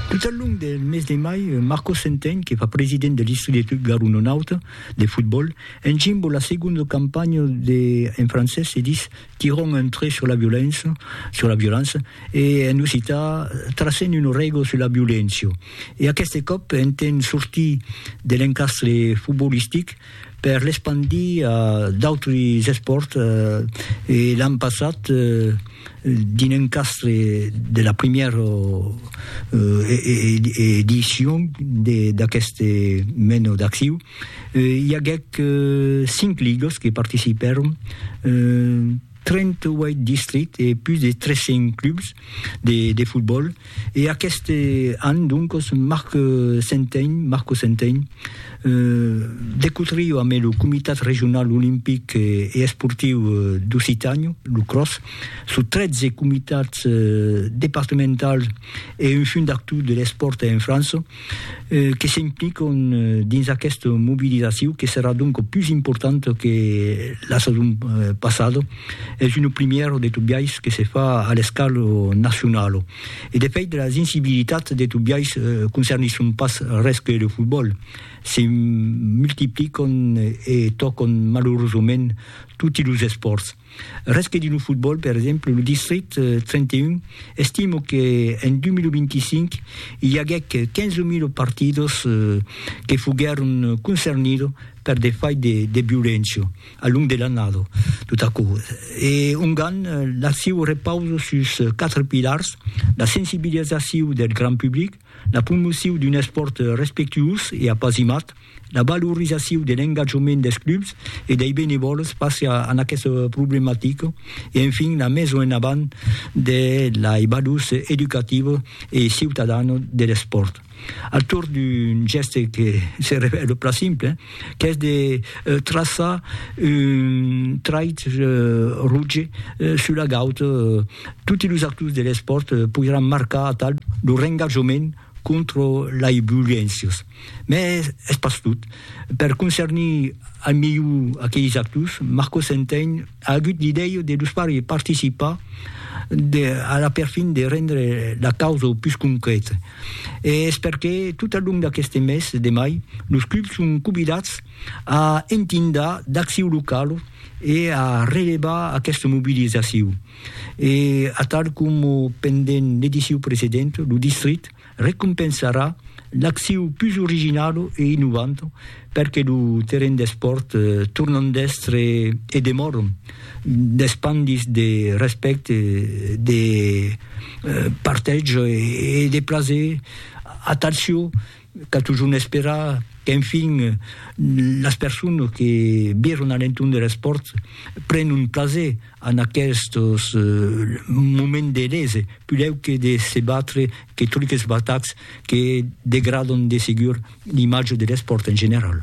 Tot al long del mes de mai, Marco Centeny, que fa president de l'Istudi de Garunonauta de fotbòl, encimbo la segonda campanha de, en francés se dis Tirons un trait sur la violença, sur la violança, e en occità Tracem una règla sur la violéncia. E aqueste còp, entent sortir de l'encastre fotbolistic, per l'espandir a d'autres espòrts e l'an passat dins un castre de la primièra edicion d'aqueste mena d'acciu. I aguèt cinc ligas que participèron. 38 districts e pus de 300 clubs de de fotbòl e aqueste an doncos Marc Centein, Marco Centein, de cotrio amé lo Comitat Regional Olimpic e Esportiu d'Occitània, lo CROS, sus 13 comitats departementals e un fundactor de l'espòrt en França, que s'impliquon dins aquesta mobilizacion que serà donc pus importanta que la sason passada, es una primièra de tot biais que se fa a l'escala nacionala. E de fèit las incibilitats de tot biais concernisson pas res que lo fotbòl, se multipliquon e tòcon malurosament toti los espòrts. Res que dir lo fotbòl, per exemple, lo Distrit 31 estimo que en 2025 i aguèc 15.000 partidos que foguèron concernidos per de fai de, de violéncia a long de l'annada, tot aquò. E ongan l'acciu repausa sus quatre pilars, la sensibilizaciu del grand public, la promociu d'un espòrt respectuós e apasimat, la valorizaciu de l'engatjament dels clubs e dei benevòls face a aquesta problematica e enfin la meson en avant de lei valors educativa e ciutadana de l'espòrt al torn d'un gèste que se revèla plan simple, qu'es de traçar un trait roge sus la gaut. Toti los actors de l'espòrt poiràn marcar atal lo rengajament contra lai violéncias. Mès es pas tot. Per concernir al melhor aqueis actors, Marco Centein a agut l'idèia de los far participar a la perfin de rendre la causa pus concrèta. e es perqué tot al long d'aqueste mes de mai los clubs son convidats a entindar d'acciu local e a relevar aquesta mobilizaciu e atal coma pendent l'ediciu precedent lo distrit recompensarà l'acciu pus original e innovant perque lo terren d'espòrt tornan d'èstre e demòron d'espandis de respècte, de partètz e de plaser a tal çò qu'a totjorn esperar qu'enfin las personas que viron a l'entorn de l'espòrt prenon plaser. En aquestos moments de lese, pudèu que de se batre que truques batats que degradon de segur l'imatge de l'espòrt en general.